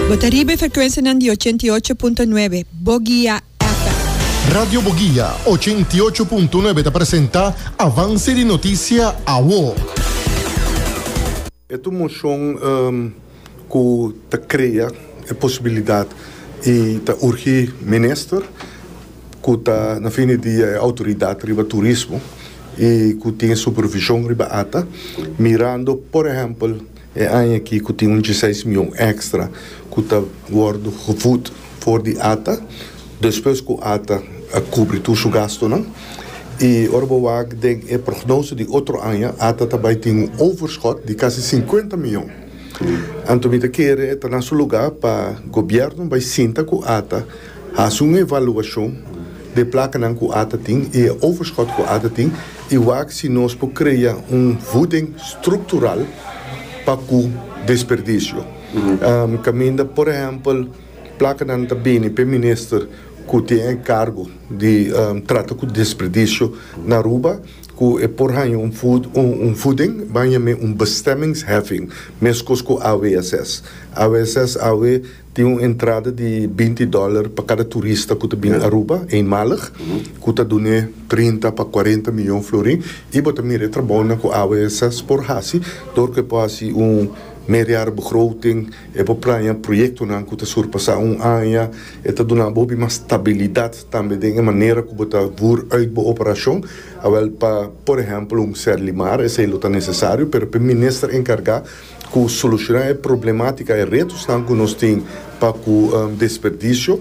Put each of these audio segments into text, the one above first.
Bo ta riba e frekuensianan di ochenta i ocho punto nuebe Bogia FM. Radio Bogia ochenta i ocho punto nuebe ta presenta Avance di Noticia Awo. E tur moshon ku ta krea e posibilidat i ta urgí minister ku ta na fin di dia e outoridat riba turismo i ku tin e supervishon riba ata mirando por ehèmpel E aña aki cu tin un diesseis mion extra cu ta wordo gevoed for di ata, despues cu ata a cubri tur su gastonan. Y ora bo wak den e prognose di otro aña, ata ta bay tin un overschot di casi cincuenta mion. Anto mi ta kere ta na su lugar pa Gobierno bay sinta cu ata Hasi un evaluashon dje plakanan ku ata tin i e overschot ku ata tin i wak si nos por krea un vuding struktural pa ku desperdisio. Kaminda por ehèmpel plakanan ta bini p'e minister ku tin e kargo di trata ku desperdisio na Aruba ku e por haña un un vuding ban yam'é un bestemmingsheffing, meskos ku AWSS. AWSS awe. Tin un entrada di binti dòler pa kada turista ku ta bini Aruba eenmalig, ku ta dun'é trinta pa kuarenta miyon florin, i bo ta mira e trabounan ku AWS por hasi dor ku e por hasi un meerjarig begroting, e por praña proyektonan ku ta surpasá un aña, e ta duna bo hopi mas stabilidat tambe den e manera ku bo ta voer uit bo operashon, awel pa, por ehèmpel, un sèr limar, esei lo ta nesesario, pero pa e minister enkargá. cu soluciona e problematica, e retosnan cu nos tin pa cu desperdicio.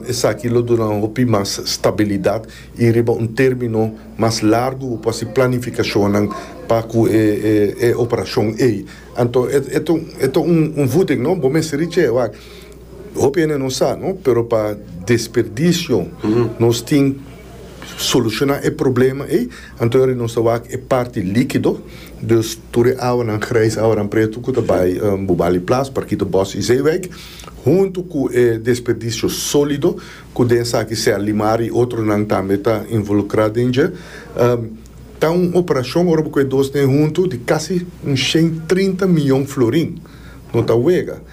Esaki lo duna un hopi mas stabilidad y riba un termino mas largu bo por haci planificacionnan pa cu e operacion ey. Anto e ta un voeding, no? Bo mester richi ey wak. Hopi hende no sa, no? Pero pa desperdicio nos tin. soluciona e problema ey, anto yori nos ta wak e parti likido, dus tur e awanan grijs, awanan preto cu ta bay Bubali Plaats, Parkito Bos y Zeewijk, hunto cu e desperdicio solido cu den esaki sea limar y otronan tambe ta involucra den dje. Ta un operacion ora bo cu e dos den hunto di casi un shen trinta miyon florin. No ta wega.